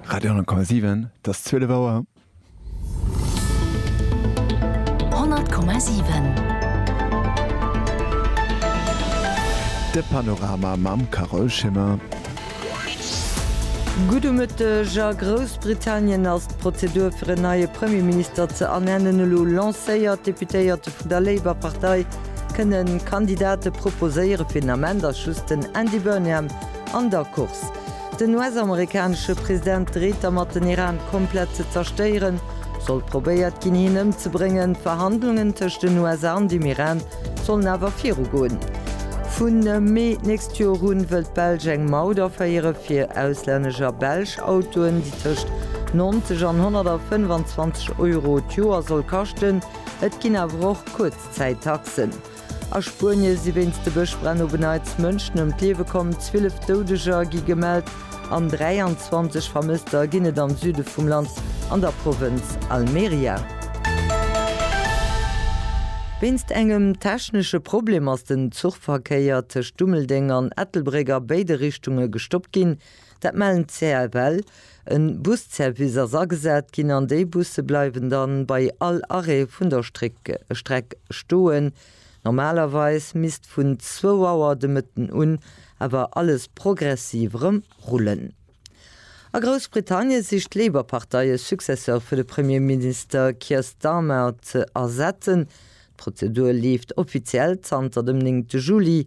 Radio 10,7 't ass 12 Auer. 100,7 De Panorama mam Carole Schimmer. Gudde Mëtteg, A Groussbritannien ass d'Prozedur fir en neie Premierminister ze ernennen elo lancéiert. D'Deputéierte vun der Labour Partei kënne Kandidate proposéiere. Fir den Ament ass just den Andy Burnham An der Course, Den US-amerikanesche President dreet dermat den Iran komplett ze zerstéieren. Sollt probéiert ginn hien ëmzebréngen, d'Verhandlungen tëscht den USA an dem Iran sollen awer viru goen. Vu Mee d'nächst Joer un wëll d'Belsch eng Maut aféiere fir auslännesch a belsch Autoen, déi tëscht 90 an 125 Euro d'Joer soll kaschten. Et ginn awer och Kuerzzäittaxen. A Spuenie si wéinst de Bëschbränn op en Neits Mënschen ëm d'Liewe komm, 12 Doudeger gi gemellt an 23 Vermësster ginn et am Süde vum Land an der Provënz Almeria. Wéinst engem technesche Problem ass den Zuchverkéier tëscht Dummeldeng an Ettelbréck a béide Richtunge gestoppt ginn. Dat mellen d'CFL. E Busservice ass agesat ginn an déi Busse bleiwen dann bei all Arrêt vun der Streck stoen. Normalerweis misst vun zwou Auer de Mëtten un awer alles progressiv erëm rullen. A Groussbritannien sicht d'Labour-Partei e Successeur fir de Premierminister Keir Starmer ze ersetzen. D'Prozedur leeft offiziell zanter dem 9 Juli.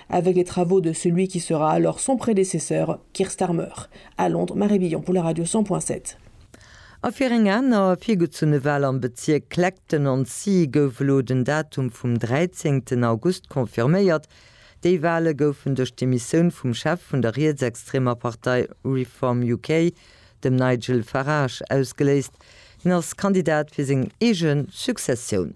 avec les travaux de celui qui sera alors son prédécesseur, Keir Starmer, à Londres, Marie Billon pour la radio 100 point 7. A fir eng aner virgezunne Wal am Bezierk Clacton-on-Sea gouf elo den Datum vum 13 August confirméiert. Déi Wale goufen duerch d'Demissioun vum Chef vun der rietsextremer Partei Reform UK, dem Nigel Farage, ausgeléist. Hien ass Kandidat fir seng eege Successioun.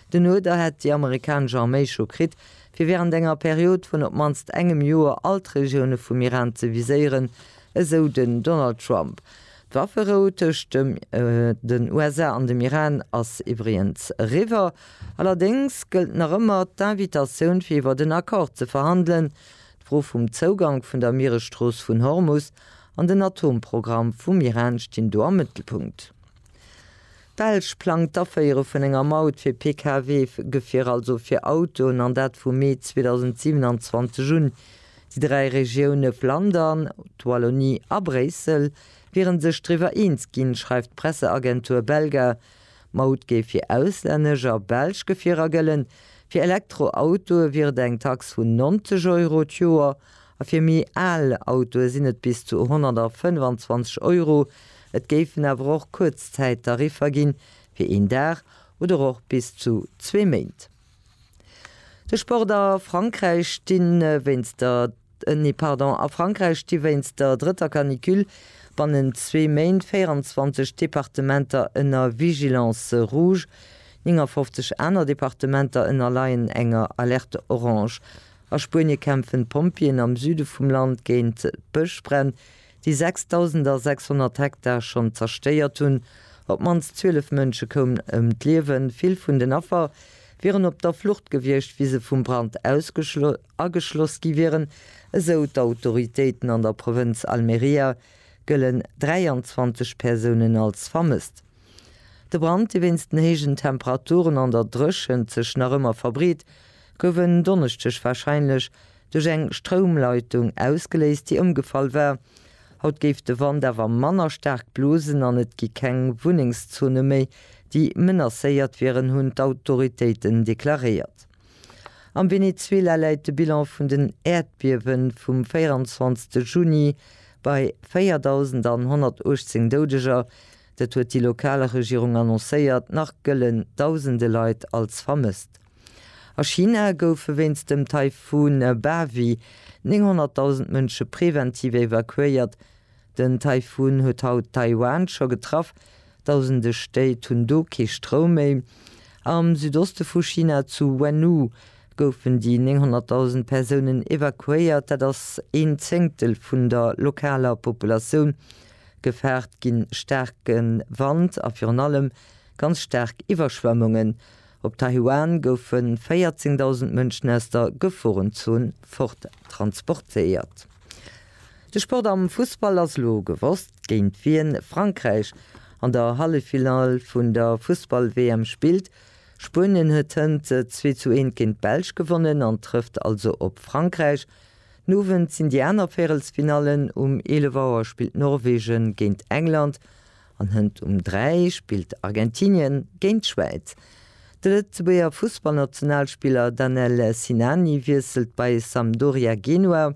Den Uerder hätt déi amerikanesch Arméi scho kritt, fir wärend enger Period vun op d'mannst engem Joer all d'Regioune vum Iran ze viséieren, esou den Donald Trump. D'Wafferou tëscht den USA an dem Iran ass iwwregens eriwwer. Allerdéngs gëllt nach ëmmer d'Invitatioun fir iwwert en Accord ze verhandelen, d'Fro vum Zougank vun der Mieresstrooss vun Hormus an den Atomprogramm vum Iran stinn do am Mëttelpunkt. D'Belsch plangt d'Aféiere vun enger Maut fir Pkw-Gefierer, also fir Autoen, an dat vu Mee 2027 un. Déi dräi Regioune Flandern, d'Wallonie a Bréissel wiere sech driwwer eens ginn, schreift d'Presseagentur Belga. D'Maut géif fir auslännesch a belsch Gefierer gëllen. Fir Elektroautoe wier et eng Tax vun 90 Euro d'Joer a fir méi al Autoe sinn et bis zu 125 Euro, Et géifen awer och Kuerzzäittariffer ginn, fir een Dag oder och bis zu zwee Méint. De Sport a Frankräich sti wéinst der drëtter Canicule bannent zwee Méint 24 Departementer ënner Vigilance rouge, 59 aner Departementer ënnerleien enger Alerte orange. A Spuenie kämpfen d'Pompjeeën am Süde vum Land géint d'Bëschbränn, déi 6.600 Hektar schonn zerstéiert hunn. Op d'mannst 12 Mënsche koumen ëm d'Liewen. Vill vun den Affer wieren op der Flucht gewiescht, wéi se vum Brand ageschloss gi wieren, esou d'Autoritéiten. An der Provënz Almeria gëllen 23 Persounen als vermësst. De Brand, dee wéinst den héijen Temperaturen an der Dréchent sech nach ëmmer verbreet, gouf en Donneschdeg warscheinlech duerch eng Stroumleitung ausgeléist, déi ëmgefall war. Haut géif de Wand awer manner staark blosen an et gi keng Wunnengszone méi, déi menacéiert wieren, hunn d'Autoritéiten deklaréiert. Am Venezuela läit de Bilan vun den Äerdbiewe vum 24 Juni bei 4.118 Doudeger. Dat huet déi lokal Regierung annoncéiert. Nach gëlle dausende Leit als vermësst. A China goufe wéinst dem Taifun Bavi 900.000 Mënsche preventiv evakuéiert. Den Taifun huet haut Taiwan scho getraff, dausende Stéit hunn do kee Stroum méi. Am Südoste vu China, zu Wennu, goufen déi 900.000 Persounen evakuéiert, dat ass een Zéngtel vun der lokaler Populatioun. Gefaart gi staarke Wand a virun allem ganz staark Iwwerschwemmungen. Op Taiwan goufe 14.000 Mënschen aus der Geforenzon fort transportéiert. De Sport am Fussball ass elo gewosst, géint wien Frankräich an der Halleffinall vun der Fussball-WM spillt. Spuenien huet hënt 2 zu 1 géint d'Belsch gewonnen an trëfft also op Frankräich. Den Owend sinn déi aner Véirelsfinallen, um 11 Auer spillt Norwegen géint England An Hënt um 3 spillt Argentinien géint d'Schwäiz. De Lëtzebuerger Fussballnationalspiller Danel Sinani wiesselt bei Sampdoria Genua.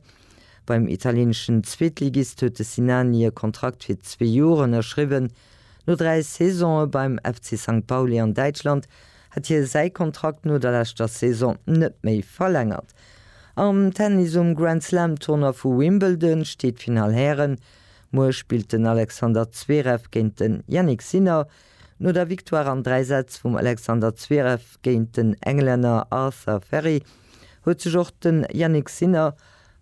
Beim italieneschen Zweetligist huet de Sinani e Kontrakt fir zwee Joer ënnerschriwwen. No dräi Saisone beim FC Sankt Pauli an Däitschland hat hie säi Kontrakt no der leschter Saison net méi verlängert. Am Tennis um Grand-Slam-Tournoi vu Wimbledon steet d'Finall Hären Muer spillt den Alexander Zverev géint den Jannik Sinner. No der Victoire an dräi Sätz vum Alexander Zverev géint den Englänner Arthur Ferry huet sech och den Jannik Sinner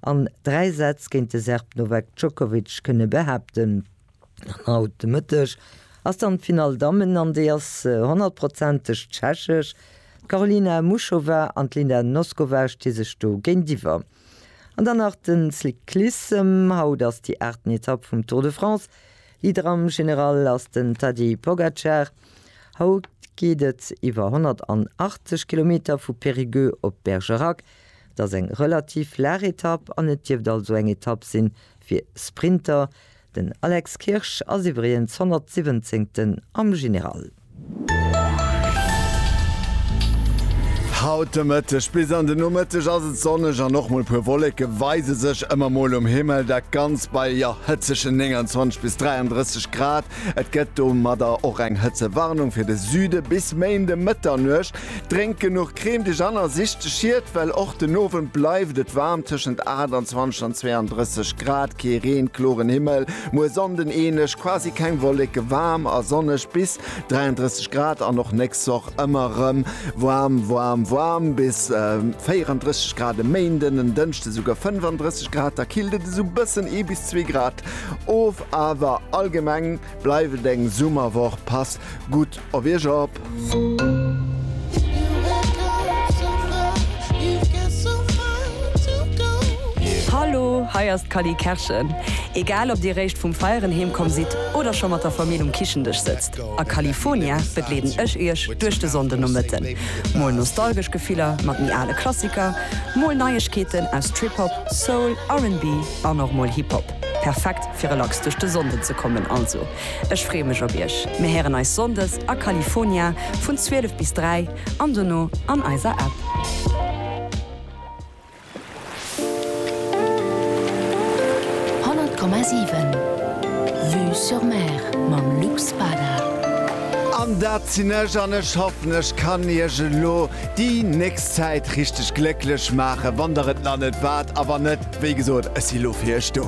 an dräi Sätz géint de Serb Novak Djokovic kënne behaapten. An haut de Mëtteg ass dann d'Finall Dammen an déi ass honnertprozenteg tschechesch. D'Karolina Muchova an d'Linda Noskova sti sech do géintiwwer. An dann nach den Cyclissem, haut ass déi aachten Etapp vum Tour de France. Leader am General ass den Tadej Pogacar. Haut geet et iwwer 180 Kilometer vu Périgueux op Bergerac. Et ass eng relativ laach Etapp an et dierft also eng Etapp sinn fir Sprinter. Den Alex Kirsch ass iwwregens 117. am General. Haut de Mëtteg bis an de Nomëtteg ass et sonneg an och mol puer Wolleke weise sech ëmmer mol um Himmel. Dat Ganzt bei jo hëtzege 29 bis 33 Grad. Et gëtt domadder och eng Hëtzewarnung fir de Süde bis méi de Mëtternuecht. Drénkt genuch Crème de Jeanne a sicht de Schiet, well och den Owend bleift et waarm, tëschent 28 an 32 Grad, kee Reen, kloren Himmel, muer Sonnden änlech, quasi keng Wolleke, waarm a sonneg bis 33 Grad an och nächst Woch ëmmer erëm waarm, waarm, waarm bis 34 Grad, e Méinden, en Dënschde souguer 35 Grad, da killt et esou bëssen ee bis zwee Grad of, awer allgemeng bleift et eng Summerwoch, passt gutt Op Iech op! Hallo, hei ass d'Cally Kerschen. Egal ob dir réischt vum Feieren heem komm sidd oder scho mat der Famill um Kichendesch sëtzt, a California begleeden ech iech duerch de Sonndenomëtten. Mol nostalgesch Gefiller mat méi ale Klassiker, mol Neiegkeeten aus Trip-Hop, Soul, RnB an och mol Hip-Hop. Perfekt fir relax duerch de Sonnden ze kommen also. Ech freeë mech op iech. Mir héieren eis Sonndes a California vun 12 bis 3 an dono an eiser App. Honnert Komma siwen Vue sur Mer mam Luc Spada. An dat sinn ech, an ech hoffen ech kann iech elo déi nächst Zäit richteg glécklech maachen, wann der et nach net waart, a wann net, wéi gesot, ech si lo fir iech do.